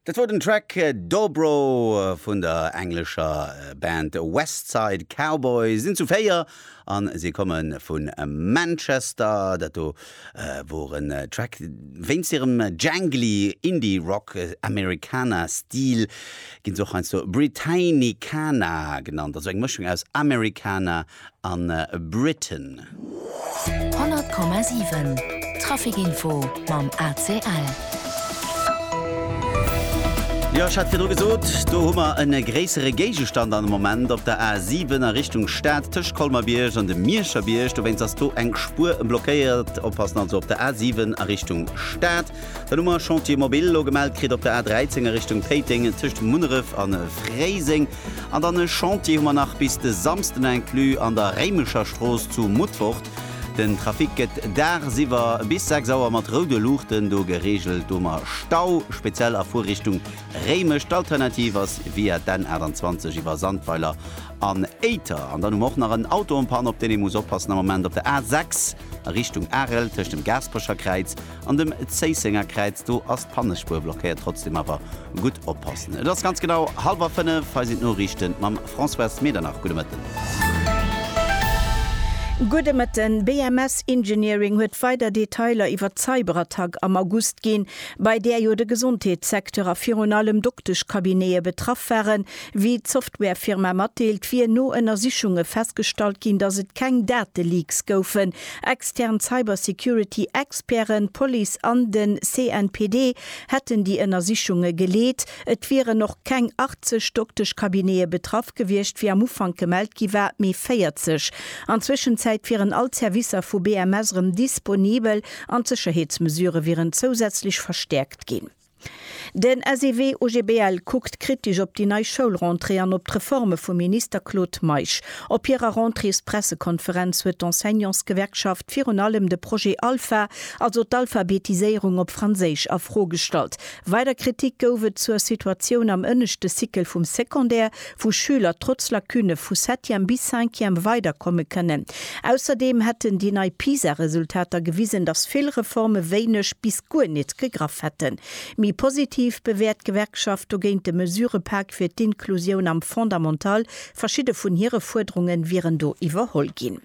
Dat wor den Track Dobro vun der englescher Band West Side Cowboy. Sinn zu 4 a si komme vu Manchester. Dat do wor en Track wéinst hirem jangly Indie-Rock, Americana-Stil ginn se och heiansdo Britannicana genannt, also eng Mëschung aus Americana an Britain. 100,7 Traficinfo mam ACL. Jo, ech hat virdru gesot, do hu mer e gréissere Géigestand an de Moment op der A7 a Richtung Stad tëscht Colmer-Bierg an dem Mierscher Bierg. Dowéinst ass do eng Spuer blockéiert. Oppassen also op der A7 a Richtung Stad. Dann hu mer Chantier Mobil elo gemellt kritt op der A13 a Richtung Péiteng tëscht Munneref a Fréiseng. An dann e Chantier hu mer nach bis de Samsden inclus an der Réimecher Strooss zu Mutfort. Den Trafic gëtt dagsiwwer bis 6 Auer mat roude Luuchten do gereegelt. Do hu mer Stau, speziell a Fuerrichtung Réimech. D'Alternativ ass via d'N 28 iwwer Sandweiler an Éiter. An dann hu mer och nach en Auto en panne op deen ee muss oppassen am Moment op der A6 a Richtung Arel tëscht dem Gaasperecher Kräiz An dem Zéissenger Kräiz, do ass d'Pannespur blockéiert. Trotzdem awer gutt oppassen. Et ass ganz genau hallwer fënnef. Hei sinn d'Noriichten mam Françoise Medernach. Gudde Mëtten. Gudde Mëtten. BMS Engineering huet weider Detailer iwwer d'Cyberattack am August ginn, bei där jo de Gesondheetssecteur a virun allem Dokteschcabinete betraff waren. Wéi d'Softwarefirma matdeelt, wier no Ënnersichunge festgestallt ginn, datt et keng Dateleaks goufen. Extern Cybersecurity Experten, d'Police an den CNPD hätten déi Ënnersichunge geleet. Et wieren och keng 80 Dokteschcabinete betraff gewiescht, wéi am Ufank gemellt gi war, mee 40. An Zwëschenzäit wieren all d'Servicer vu BMS erëm disponibel an d'Sécherheetsmesure wieren zousätzlech verstäerkt ginn. Den SEW OGBL kuckt kritesch op déi nei Schoulrentrée an op d'Reforme vum Minister Claude Meisch. Op hirer Rentréespressekonferenz huet d'Enseignantsgewerkschaft virun allem de Projet Alpha, also d'Alphabetiséierung op Franséisch, a Fro gestallt. Weider Kritik gouf et zur Situatioun am ënneschte Cycle vum Secondaire, wou Schüler trotz Lacune vu Septième bis Cinquième weiderkomme kënnen. Ausserdeem hätten déi nei PISA-Resultater gewisen, datt vill Reforme wéineg bis guer nit gegraff hätten. Méi positiv bewäert d'Gewerkschaft dogéint de Mesurëpak fir d'Inklusioun am Fondamental, verschidde vun hire Fuerderunge wieren do iwwerholl ginn.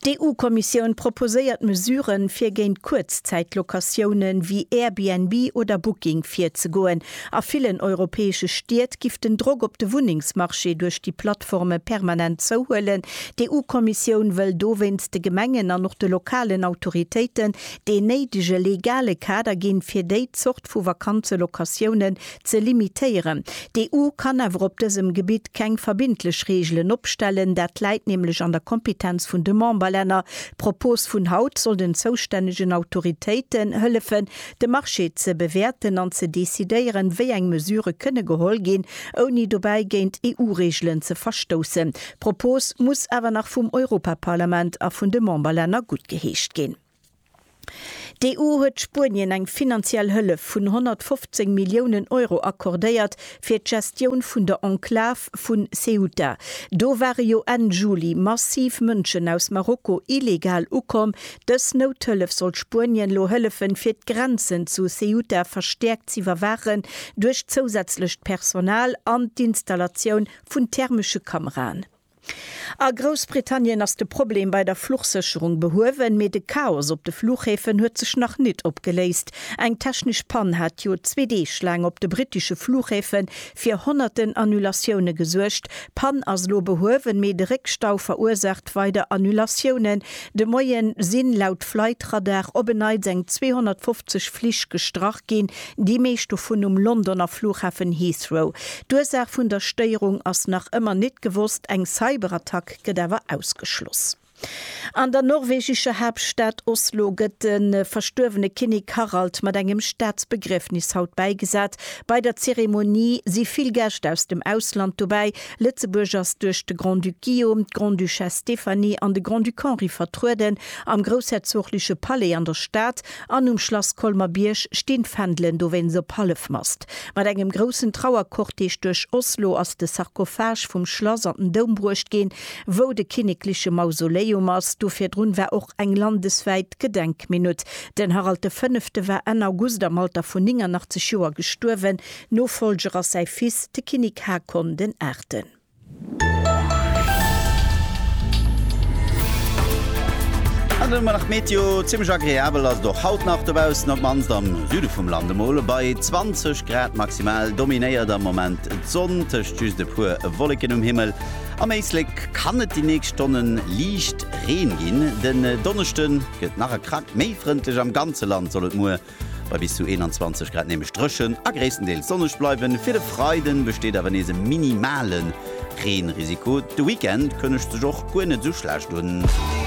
D'EU-Kommissioun proposéiert Mesuren, fir géint Kuerzzäit-Locatiounen wéi Airbnb oder Booking virzegoen. A villen europäesche Stied giff den Drock op de Wunnengsmarché duerch déi Plattforme permanent zouhuelen. D'EU-Kommissioun wëll dowéinst de Gemengen an och de lokalen Autoritéiten deen néidege legale Kader ginn, fir déi Zort vu Vakanzelocatiounen ze limitéieren. D'EU kann awer op dësem Gebitt keng verbindlech Reegelen opstellen, dat läit nämlech an der Kompetenz vun de Memberlänner. D'Propos vun haut soll den zoustännegen Autoritéiten hëllefen, de Marché ze bewäerten an ze decidéieren, wéi eng Mesure kënne geholl ginn, ouni dobäi géint EU-Reegelen ze verstoussen. D'Propos muss awer nach vum Europaparlament a vun de Memberlänner guttgeheescht ginn. D'EU huet Spuenien eng finanziell Hëllef vun 115 Milliounen Euro accordéiert fir d'Gestioun vun der Enklav vu Ceuta. Do ware jo Enn Juli massiv Mënschen aus Marokko illegal ukomm. Dës Nouthëllef soll Spuenien elo hëllefen, fir d'Grenzen zu Ceuta verstäerkt z'iwwerwaachen duerch zousätzlecht Personal an d'Installatioun vun thermesche Kameraen. A Groussbritannien ass de Problem bei der Fluchsécherung behuewen, mee de Chaos op de Fluchhäfen huet sech nach nit opgeléist. Eng technesch Pann hat jo zwee Deeg laang op de brittesche Fluchhäfe fir honnerten Annulatioune gesuergt. D'Pann ass elo behuewen, mee de Réckstau verursaacht weider Annulatiounen. De Moien sinn, laut Flightradar, op en Neits eng 250 Flich gestrach ginn. Déi meescht dovun um Londoner Flughafen Heathrow. D'Ursaach vun der Stéierung ass nach ëmmer nit gewosst, eng Cyberattack gëtt awer ausgeschloss. An der norwegescher Haaptstad Oslo gëtt de verstuerwene Kinnek Harald mat engem Staatsbegriefnis haut bäigesat. Bei der Zeremonie si vill Gäscht aus dem Ausland dobäi. Lëtzebuerg ass duerch de Grand-Duc Guillaume, d'Grande-Duchesse Stéphanie an de Grand-Duc Henri vertrueden am groussherzogleche Palais an der Stad. An um Schlass Colmer Bierg stinn d'Fändelen dowéinst op Hallefmast. Mat engem groussen Trauercortège duerch Oslo ass de Sarkophage vum Schlass an den Doum bruecht ginn, wou de kinnekleche Mausoleum ass. Do virdrun war och eng landeswäit Gedenkminutt. Den Harald de Fënnefte war Enn August am Alter vun 89 Joer gestuerwen. Nofollger ass säi Fils, de Kinnik Haakon den Aachten. An ëmmer nach d'Meteo, zimmlech agreabel ass et och haut nach dobaussen, op d'mannst am Süde vum Land. Emol bei 20 Grad maximal dominéiert am Moment d'Sonn, tëscht just e puer Wolleken um Himmel. Am Éislek kann et déi nächst Stonne liicht Reen ginn. Den Donneschde gëtt nach e Krack méi frëndlech, am ganze Land soll et muer Bei bis zu 21 Grad nämlech dréchen a gréisstendeels sonneg bleiwen. Fir de Freiden besteet awer nees e minimalen Reenrisiko. De Weekend kënnegt sech och guer net esou schlecht un.